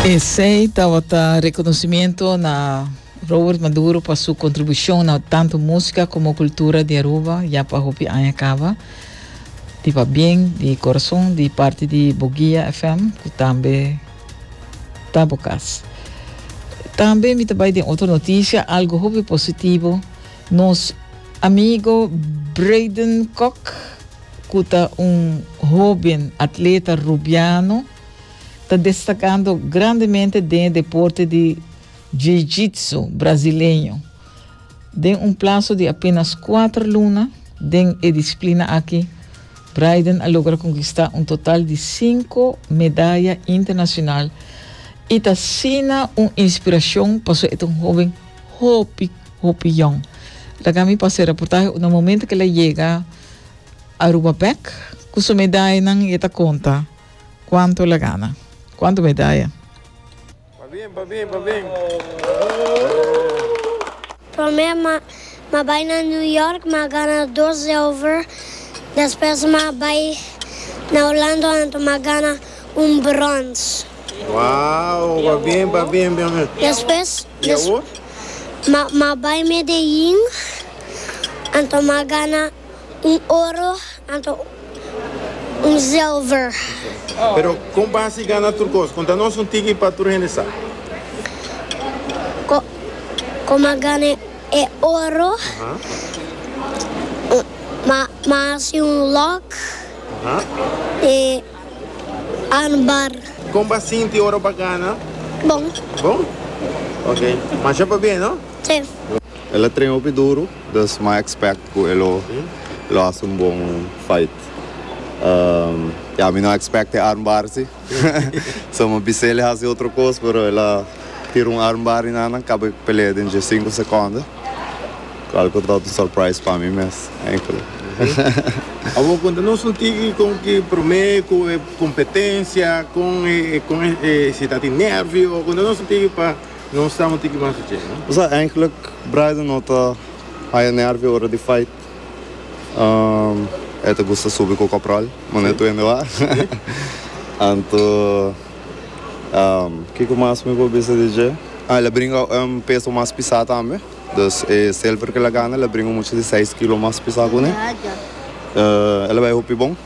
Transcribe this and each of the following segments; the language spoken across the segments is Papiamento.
Esey tabata reconocimiento na Robert Maduro pa su contribucion na tanto musica como cultura di Aruba ya pa hopi aña caba. Di pa bien, di corazon, di parte di Boguia FM, cu tambe ta bo cas. Tambe mi ta bay den otro noticia, algo hopi positivo. Nos amigo Braden Kok, cu ta un hoben atleta Rubiano, ta destakando grandemente den e deporte di jiu-jitsu brasileño. Den un plaso di apenas kuater luna den e disiplina aki, Braiden a logra konkistá un total di sinku medaya internashonal i ta asina un inspirashon pa su e ta un hóben hopi, hopi yòn. Laga mi pasa e reportahe unda momento ku el a yega Aruba bèk ku su medayanan i e ta konta. Cuanto la gana? Cuanto medaya? Pa bien, pa bien, pa bien. Prome ma ma bai na New York ma gana dos zilver, despues ma bai na Orlando anto ma gana un brons. Wow, pa bien, pa bien, pa bien. Despues y awor? ma ma bai Medellin anto ma gana. Un oro anto un zilver. Pero kon basi gana tur kos? Konta nos un tiki pa tur hende sa. Ko, kon m'a gana e oro? M'a m'a hasi un lòk di anbar. Kon b'a sinti ora b'a gana? Bon. Bon? Oke. Masha pabia, no? Si. El a trena hopi duru. Dus m'a expect cu e lo lo haci un bon fight. Ya mi no expect e armbar si. So m'a bis'el e haci otro cos pero el a tira un armbar y nannan caba e pelea den dje cinco seconden. Cual cu ta un surprise pa mi mes enkel. Awor con ta nos un tiki con ki prome cu e competencia con e con e si ta tin nervio con ta nos un tiki pa. Nos ta un tiki mas dje, no? Sa, eindelijk Bryden no ta haya nervio ora di fight. E ta gusta subi cu Caporal, mane e tuende wak. Anto, kico mas mi por bisa di dje? Ah, el a bringa un peso mas pisá tambe. Dus e silver cu el a gana, el a bringa mucha di seis kilo mas pisá cu ne. El a bai hopi bon.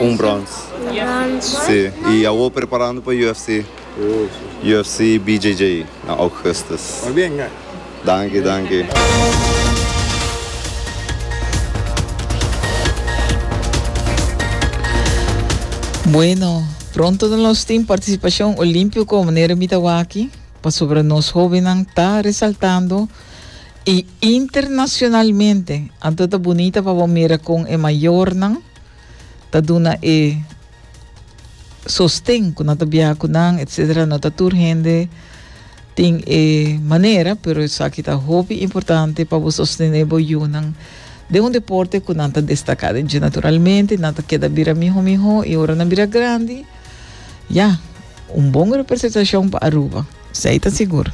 Un brons. Un brons. Sí, y awo preparando pa UFC. UFC BJJ na Augustus. Pa bien ka. Danki, danki. Bueno, pronto no los tin participacion olimpico manera mi ta waki, pasobra nos hobennan ta resaltando. Y internacionalmente, anto ta bunita pa bo mira con e mayornan ta duna e sosten cu nan ta biaha cu nan, etcetera. No ta tur hende tin e manera, pero esaki ta hopi importante pa bo sostene bo yunan den un deporte cu nan ta destaca den dje. Naturalmente, nan ta keda bira miho miho y ora nan bira grandi, ya, un bon representacion pa Aruba. Sei ta sigur.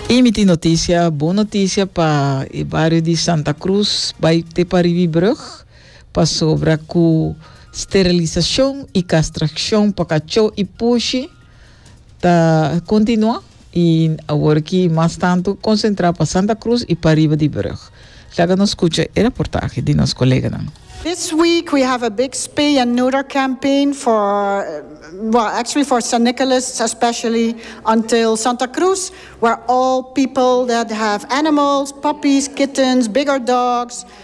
Y mi tin noticia, bon noticia pa e bario di Santa Cruz, bay te pa Rivibrug, pasobra cu sterilisacion y castraccion pa cacho y pushi ta continua. I awor aki mas tantu konsentrá pa Santa Cruz i pariba di Brug. Laga nos skucha e raportahe di nos koleganan. This week we have a big spay and neuter campaign for well actually for Saint Nicholas especially until Santa Cruz where all people that have animals, puppies, kittens, bigger dogs,